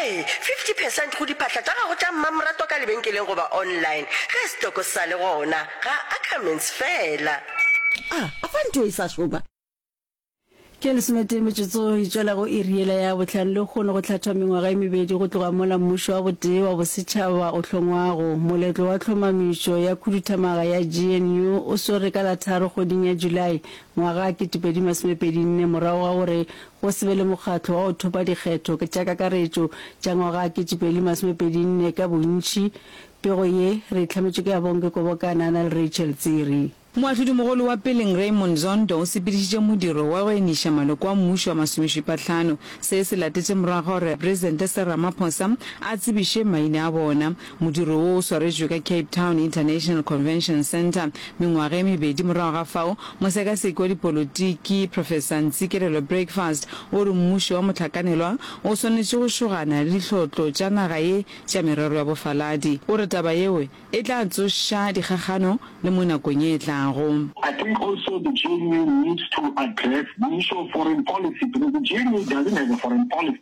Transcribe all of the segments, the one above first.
Ee, 50 percent go diphatla tša gago tša mmamoratwa ka lebenkeleng goba online, ge setoko se sa le gona, ga Ackermans feela. A a fa ntho e sa šoma? Ke lesometee metsotso e tšwela go iri yela ya bohlano lekgono go hlathwa mengwaga e mebedi go tloga mola mmušo wa botee wa bosetšhaba o hlongwago. Moletlo wa tlhomamišo ya khuduthamaga ya GNU o swere ka la tharo kgweding ya Julae ngwaga 2024 morago ga gore Go se be le mokgatlo wa go thopa dikgetho tša kakaretšo tša ngwaga 2024 ka bontši. Pego ye re e hlametšwe ke Abongwe Kobokana a na le Rachel Tsiri. Moahlodimogolo wa Peleng Raymond Zondo o sepedišitše modiro wa go eniša maloko a mmušo a masomešupahlano. Se se latetše morago ga gore Presidente Cyril Ramaphosa a tsebiše maina a bona. Modiro wo o swaretšwe ka Cape Town International Convention Centre. Mengwaga e mebedi morago ga fao, mosekaseki wa dipolotiki, Professor Ntsikelelo Breakfast, o re mmušo wa mohlakanelwa o swanetše go šogana le dihlotlo tša naga ye tša merero ya bofaladi. O re taba yeo e tla tsoša dikgakgano le mo nakong ye e tlago. I think also the GNU needs to address the issue of foreign policy because the GNU doesn't have a foreign policy.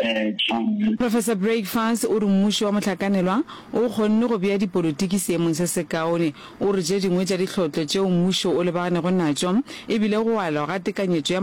Tšhomme. Professor Breakfast o re mmušo wa mohlakanelwa o kgonne go bea dipolotiki seemong se sekaone. O re tše dingwe tša dihlotlo tšeo mmušo o lebaganeggo natšo e bile go alwa ga tekanyetšo ya